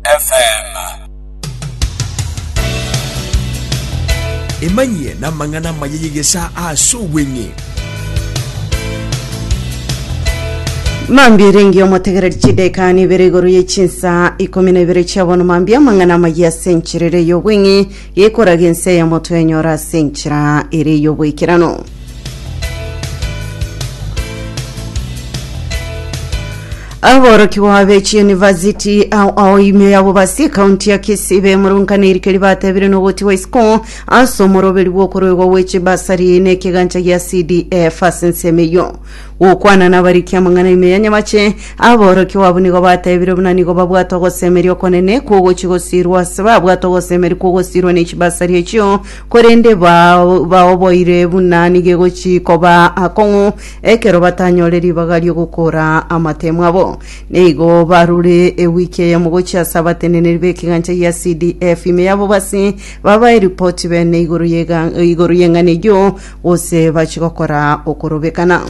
FM. Emanyie namang'ana amaya y'egesaa ase obweng'e. Mambia erenge omotegereri chideka nibere igoro ye chinsa ikomi na ibere chia bono mambia amang'ana amaya ase encherere y'obweng'e Gekoraga ense yamo twenyora ase enchera ere y'oboikeranu. Aborokigwa be chiunivasiti ao ao imio yabo basi ekaunti ya Kisii bemurungana erikeri batebire nogotigwa isiko ase omoroberi bw'okoruegwa gwe chibasari nekegancha gia CDF ase ensemo eyio Gokwana nabariki amang'ana ime ya nyamache, aborokigwa abwo nigo batebire buna nigo babwate ogosemeria okonene kw'ogochia gosiirwa ase babwate ogosemeria kw'ogosiirwa ne chibasari echio, korende ba- baoboire buna nigo egochia koba akong'u ekero batanyore ribaga ri'ogokora amatemo abo. Neigo barure ewiki eyemo gochia ase abateneneri b'ekegancha gia CDF ime y'abobasi, babae ripoti bene igoro y'ega- igoro y'eng'ana eyio, gose bachie gokora okorobekana.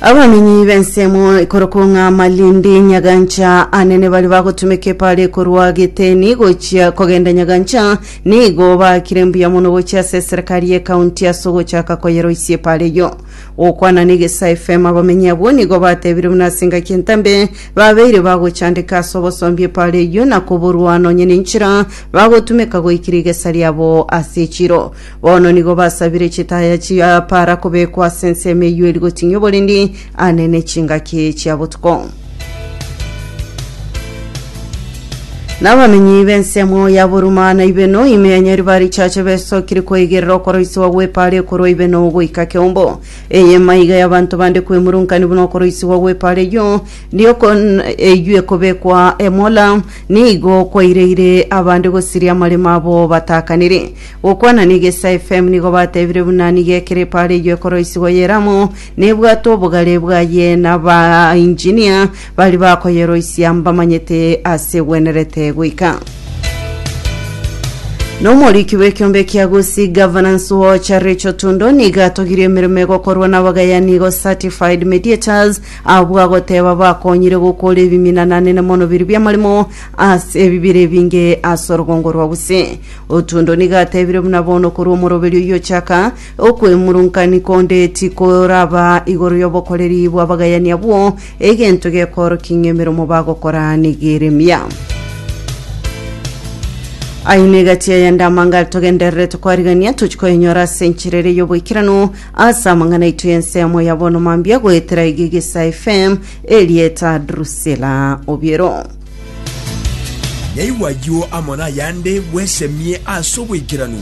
Abamenyi b'ensemo ikorokwo ng'a Malindi Nyagancha anene bari bagotumeka epare korwa Geteni gochia kogenda Nyagancha nigo bakire mbuya mono gochia ase eserekari y'ekaunti ase ogochaka koyeroisia epare eyio. Gokwana n'Egesae FM abamenyi abwo nigo batebire buna ase engaki entambe babeire bagochandeka ase obosombi epare eyio na koborwa nonye nenchera bagotumeka goika rigesa riabo ase chiro. Bono nigo basabire chitaya chia para kobekwa ase ensemo eyio eri goting'ia oborindi ane ne chingaki chia botuko. Nabamenyi b'ensemo ya Boruma na Ibeno ime ya Nyariba richache besokire kweigerera okoroisiwa gw'epaara ekorwa Ibeno goika Keumbo. Eye maiga y'abanto bande kwemurunkania buna okoroisiwa gw'epaara eyio riokon- eyio ekobekwa Emola Nigo kwaireire abande gosiria amaremo abo bataakanire. Gokwana na Egesa FM nigo batebire buna nigo ekerepo are eywo ekoroisigwa yere amo nebwate obogare bwaye na ba engineer baria bakoyeroisia mbamanyete ase egwenerete goika. Na omoriki bw'ekiombe kia Gusii Governance Watch Rachel Tundo nigo atogirie emeremo egokorwa na abagayani igo Certified Mediators Abwo agoteba bakonyire gokora ebimina nanene mono biria bi'amaremo ase ebibira ebinge ase orogongo rwa Gusii. Otundo nigo atebire buna bono korwa omoroberi oyio ochaka, Okwemurunkaini konde tikoraba igoro y'obokoreri bw'abagayani abwo, egento gekoorokia ng'a emeromo bagokora negere mia. Aye negati aya ndamangare togendererete kwarigania, tochikoenyora ase enchera eria y'oboikeranu, Ase amang'ana aitwe y'ensemo ya bono mambia goetera Igigisa FM erieta Drusilla Obiero. Naigwa ayio amo nayande bwesemie ase oboikeranu.